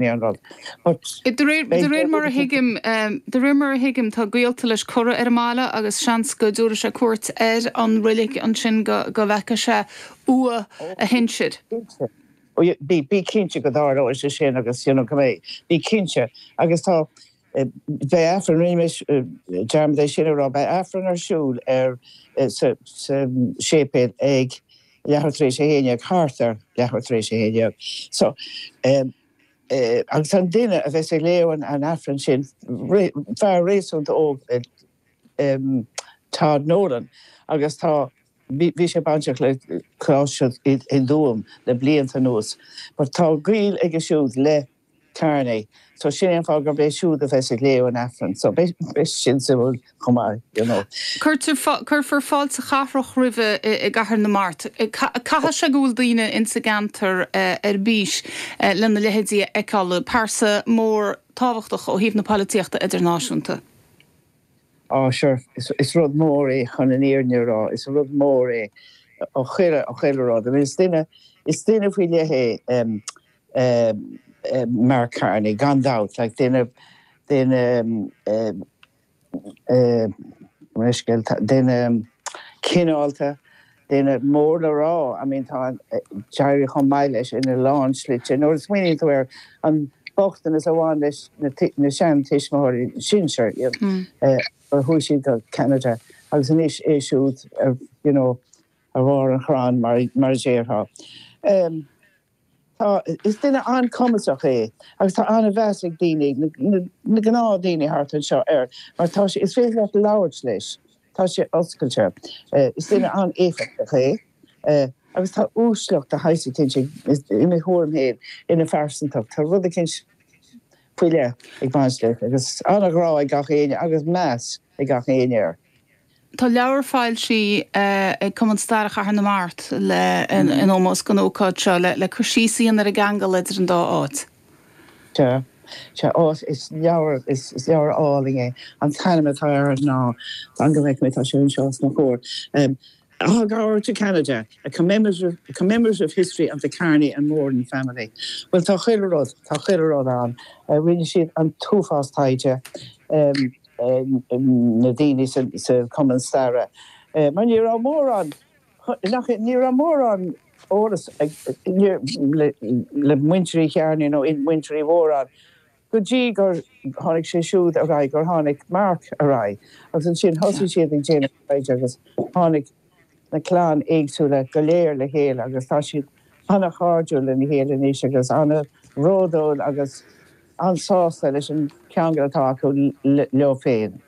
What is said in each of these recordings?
De réir mar a thuigim, de réir mar a thuigim tá gaolta leis curtha ar an mbaile agus seans go dtabharfaidh sé cuairt ar an reilig ansin go bhfeicfidh sé uaigh a shinsir. Bí cinnte go dtarlóidh sé sin agus you know go mbeidh, bí cinnte agus tá, Beidh Aifreann, rinnimis dearmad é sin a rá, beidh Aifreann ar siúl ar, sa, sa séipéal ag leathuair tar éis a haon dhéag, thart ar leathuair tar éis a haon dhéag. So, em, eh, agus an duine a bheas ag léamh an, an Aifrinn sin, fear réasúnta óg, eh, em, Tod Nolan agus tá, bhí, bhí sé bainteach le Coláiste i, i dTuaim le blianta anuas. But tá gaol aige siúd le. Carney. So sin é an fáth gurb é siúd a bheas ag léamh an Aifrinn. So beidh sin suimiúil chomh maith, you know. Cuirfear fáilte chathrach roimhe i gCathair na Mart. Caithfidh sé go bhfuil daoine insa gceantar ar bís lena leithéidí a fheiceáil, pearsa mór tábhachtach ó thaobh na polaitíochta idirnáisiúnta. Á, sure, is rud mór é chun an fhírinne a rá, is rud mór é ó chuile, chuile rud. I mean is duine faoi leith é. Mark Carney gan dabht like duine duine duine cineálta duine mór le rá I mean tá an d'éirigh chomh maith leis in a lán slite nuair a smaoiníonn tú air an bochtanas a bhain leis na na sean tuismitheoirí sinsear you know chuaigh siad go Ceanada agus anois é siúd ar you know ar bharr an chrann mar mar a déarfá. Tá, is duine an-cumasach é agus tá an-mheas ag daoine, na gnáthdhaoine thart anseo air mar tá sé, is féidir leat labhairt leis, tá sé oscailte. Is duine an-éifeachtach é agus tá uaisleacht de shaghas eicínt ag, i mo thuairim fhéin, ina phearsantacht. Tá rud eicínt faoi leith ag baint leis agus an-ghrá ag gach éinne agus meas ag gach éinne air. Tá leabhar foilsithe ag Cumann Staire Chathair na Mart in ómós don ócáid seo le cur síos a dhéanamh ar an gceangal idir an dá áit. Sea, sea, áit, is leabhar, is leabhar álainn é. An t-ainm atá air ná, fan go bhfeice mé, tá sé anseo os mo chomhair, Aughagower to Canada, a commemorative history of the Carney and Moran family. Bhuel, tá chuile rud, tá chuile rud ann. Rinne siad an t-uafás taighde. na daoine sa Cumann Staire mar ní raibh mórán, nach, ní raibh mórán eolas ag, le Muintir Uí Chearnaigh nó Muintir Uí Mhóráin go dtí gur tháinig sé siúd ar aghaidh, gur tháinig Mark ar aghaidh agus ansin thosaigh siad ag déanamh staidéir agus tháinig, na clann éagsúla go léir le chéile agus tá siad an-chairdiúil lena chéile anois agus an-bhródúil agus an-sásta leis an cheangal atá acu leo féin.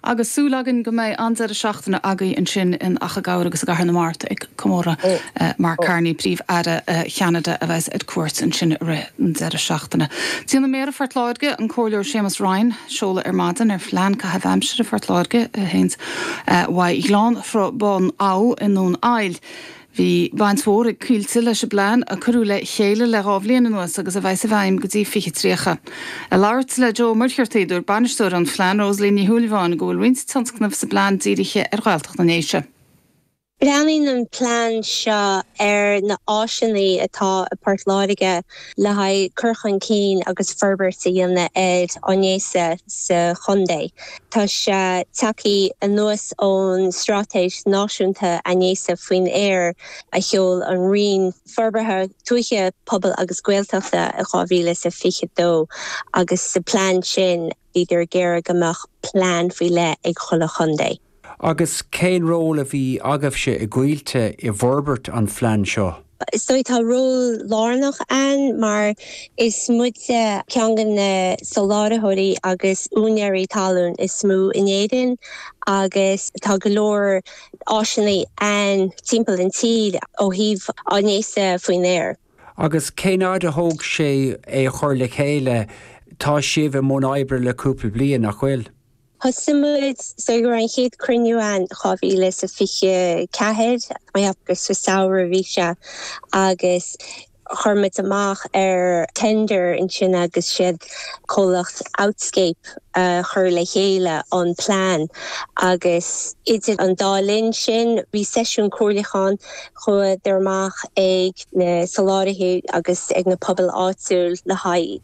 Agus súil againn go mbeidh an-deireadh seachtaine againn ansin in Achadh Gabhair agus i gCathair na Mart ag comóradh Mark Carney, Príomh-Aire Cheanada a bheas ar cuairt ansin i rith an deireadh seachtaine. Déanfaidh Méara Phort Láirge, an Comhairleoir Séamus Ryan, seoladh ar maidin ar Phlean Caithimh Aimsire Phort Láirge. i nGleann Thrá Bhun Abha i nDún Aill. Bhí baint mhór ag Coillte leis an bplean a cuireadh le chéile le dhá bhliain anuas agus a bheas i bhfeidhm go dtí 2030. Ag labhairt le Joe Muircheartaigh, dúirt bainisteoir an phlean, Rosaleen Ní Shúilleabháin, go bhfuil roinnt tionscnamh sa bplean dírithe ar Ghaeltacht na nDéise. Breathnaíonn an plean seo ar na áiseanna atá i Port Láirge le haghaidh cur chun cinn agus forbairt a dhéanamh ar áineas sa chontae. Tá sé tagthaí anuas ón Stráitéis Náisiúnta Áineasa Faoin Aer a sheol an Roinn Forbartha Tuaithe, Pobail agus Gaeltachta i 2022 agus sa plean sin, Bhíodar ag iarraidh go mbeadh plean faoi leith ag chuile chontae. Agus cén ról a bhí agaibhse i gCoillte i bhforbairt an phlean seo? So tá ról lárnach againn mar is muide ceann de na solátharthóirí agus úinéirí talún is mó in Éirinn agus tá go leor áiseanna againn timpeall an tír ó thaobh áineasa faoin aer. Agus cén fhad a thóg sé é a chur le chéile? Tá sibh i mbun oibre le cúpla bliain, nach bhfuil? Thosaigh muid ar an chéad chruinniú in dhá mhíle is a fiche ceathair agus sa samhradh a bhí sé agus chuir muid amach ar tender ansin agus is iad comhlacht Outscape a chuir le chéile an plean agus idir an dá linn sin bhí seisiún comhairliúcháin Chuadar amach ag na soláthraithe agus ag na pobail áitiúil le haghaidh